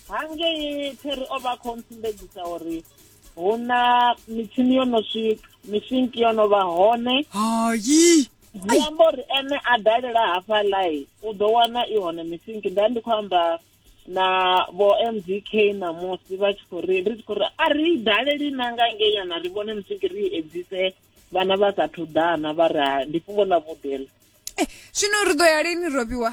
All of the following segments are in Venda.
hangei phiri o vha khou ntsumbedzisa uri hu na mitshini yo no swika mishinki yo no vha hone hayi zwi amba uri ene a dalela hafha lai u ḓo wana i hone mishinki nda ndi khou amba na vho mdk ṋamusi vha tshi khou ri ri tshi khou ri a ri daleli na nga ngei yana ri vhone mishinki ri edzise vhana vha sathu ḓana vha ri ndi fhungo ḽa vhuḓela eh, zwino ri ḓo ya lini robiwa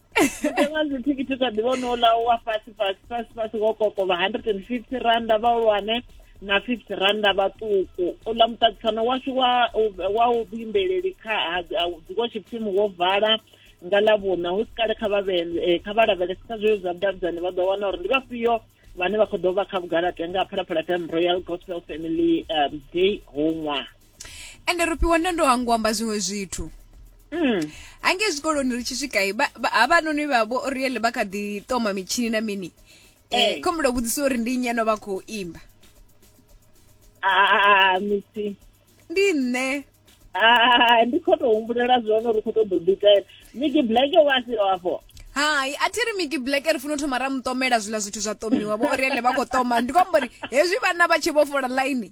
Mutengo dzithikhithi kha ḓivha no ḽa wa fhasi fhasi fhasi fhasi wo kokovha 150 randa vhahulwane na 50 randa vhaṱuku uḽa muṱaṱisano washu wa wa u vhuimbeleli kha dziko tshipfimi wo vala nga ḽa vhuna hu si kale kha vha eh, kha vha lavhelese kha zweo zwa vhudavhidzani vha ḓo wana uri ndi vhafhio vhane vha khou ḓo vha kha vhugalate nga phalaphala fm royal gospel family um, day hoṅwaha ende ro fhiwa ndo ndo hangu amba zwiṅwe zwithu Mm. hange zwikoloni ri tshi swika i, ba- ba- havhanoni vha vho oriele vha kha ḓi toma mitshini na mini Eh. um khomulo vhudzisa uri ndi nnyi ano vha khou imba Ah, misi ndi nṋe Ah, ndi khou tou humbulela zwone uri khou tou ḓo ḓikaela miki black wa si afho hai a thi ri miki black ri funa u thoma ra mutomela zwiḽa zwithu zwa tomiwa vho oriele vha khou toma ndi khou amba uri hezwi vhana vha tshi vho fola ḽaini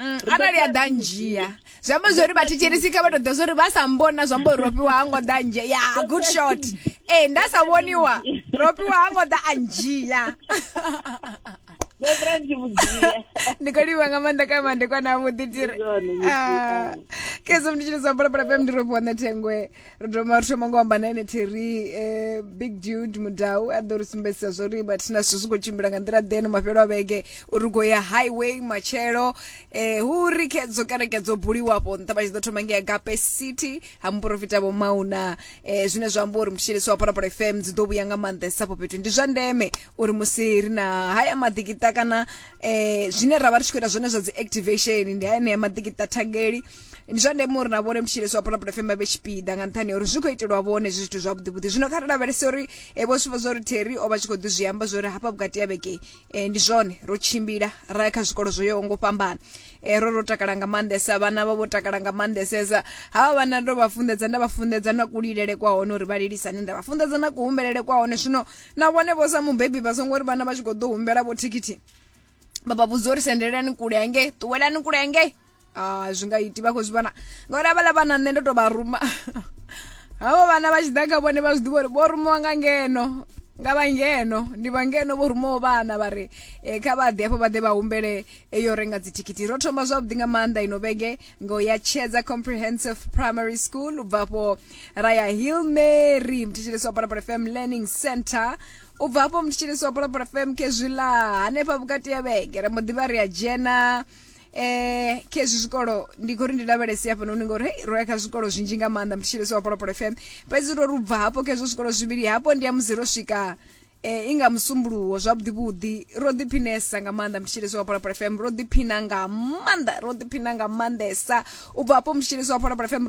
Mm, arali a ḓa ndzhia zwi amba zwori vhathetshelisi kha vha tou ḓa zwori vha sa mbona zwi amba uri rofhiwa ha ngo ḓa ndzhia ya good shot ee nda sa vhoniwa rofhiwa ha ngo ḓa a ndzhia ndi khou livha nga maanḓa ka mandekwana avhuḓi tiri kezo mnditshini zwa bolapolapemndirofhiwa nṋe thengwe ri doma ri thoma ngo amba na ene theri eh, big dude mudau a ḓo ri sumbedzisa zwo ri mathina zwithu zwi khou tshimbila nga nḓila ḓe no mafhelo a vhege uri u khou ya highway matshelo eh, hu ri kedzo kereke dzo buliwa afho nṱha vha tshi ḓo thoma ngei agape city ha muporofita vho mauna eh, zwine zwa amba uri mutshielisi wa phalaphala fm dzi ḓo vhuya nga maanḓesa afho fhethu ndi zwa ndeme uri musi ri na haya maḓikita kana eh, zwine ra vha ri tshi khou ita zwone zwa dzi activation ndi haenea maḓikita thangeli ndi zwa ndeme uri na vhone mutshilesi wa pulapula fm vhe tshipiḓa nga nṱhani ha uri zwi khou itelwa vhone zwi zwithu zwavhuḓivhuḓi zwino kha ri lavhelese uri eh, vho sivho zwo ri terry o vha tshi khou ḓi zwi amba zwori hafha vhukati ya vhege eh, ndi zwone ro tshimbila ra ya kha zwikolo zwo yaho ngo fhambana eh, ro ro takala nga maanḓesa vhana vha vho takala nga maanḓesesa havha vhana ndo vha funḓedza nda vha funḓedza na kulilele kwa hone uri vha lilisani nda vha funḓedza na kuhumbelele kwa hone zwino na vhone vho sa mubebi vha songo ri vhana vha tshi khou ḓo humbela vho thikhithi vha vha vhudza uri sendelelani kule hangei ṱuwelani kule hangei ah zwi nga iti vha khou zwi vhona ngauri avhaḽa vhana nṋe ndo tou vha ruma havho vhana vha tshi ḓa kha vhone vha zwi ḓivha uri vho rumiwa nga ngeno nga vha ngeno ndi vha ngeno vho rumaho vhana vha ri um kha vha ḓe hafho vha ḓe vha humbele eyo renga dzithikhithi ro thoma zwavhuḓi nga maanḓa ino vhege ngo ya tshedza comprehensive primary school u bva afho ra ya hill mary mthetshelesi wa parapara fm learning center u bva afho mthetshelesi wa parapara fm khezwiḽa hanefha vhukati ya vhege ra mbo ḓi vha ri a dzhena eh khezwi zwikolo ndi khori ndi lavhelese hafhanoni ngori hei ro ya kha zwikolo zwinzhi nga maanḓa mutshilesi wa polopolo fm fhedzi ro rubva hafho khezwo zwikolo zwivhili hafho ndi ya musi ro swika eh inga musumbuluwo zwavhuḓi vhuḓi ro ḓiphinesa nga maanḓa mutshilesi wa polopolo fm ro ḓiphina nga maanḓa ro ḓiphina nga maanḓesa u bva hafho mutshilesi wa polopolo fm ro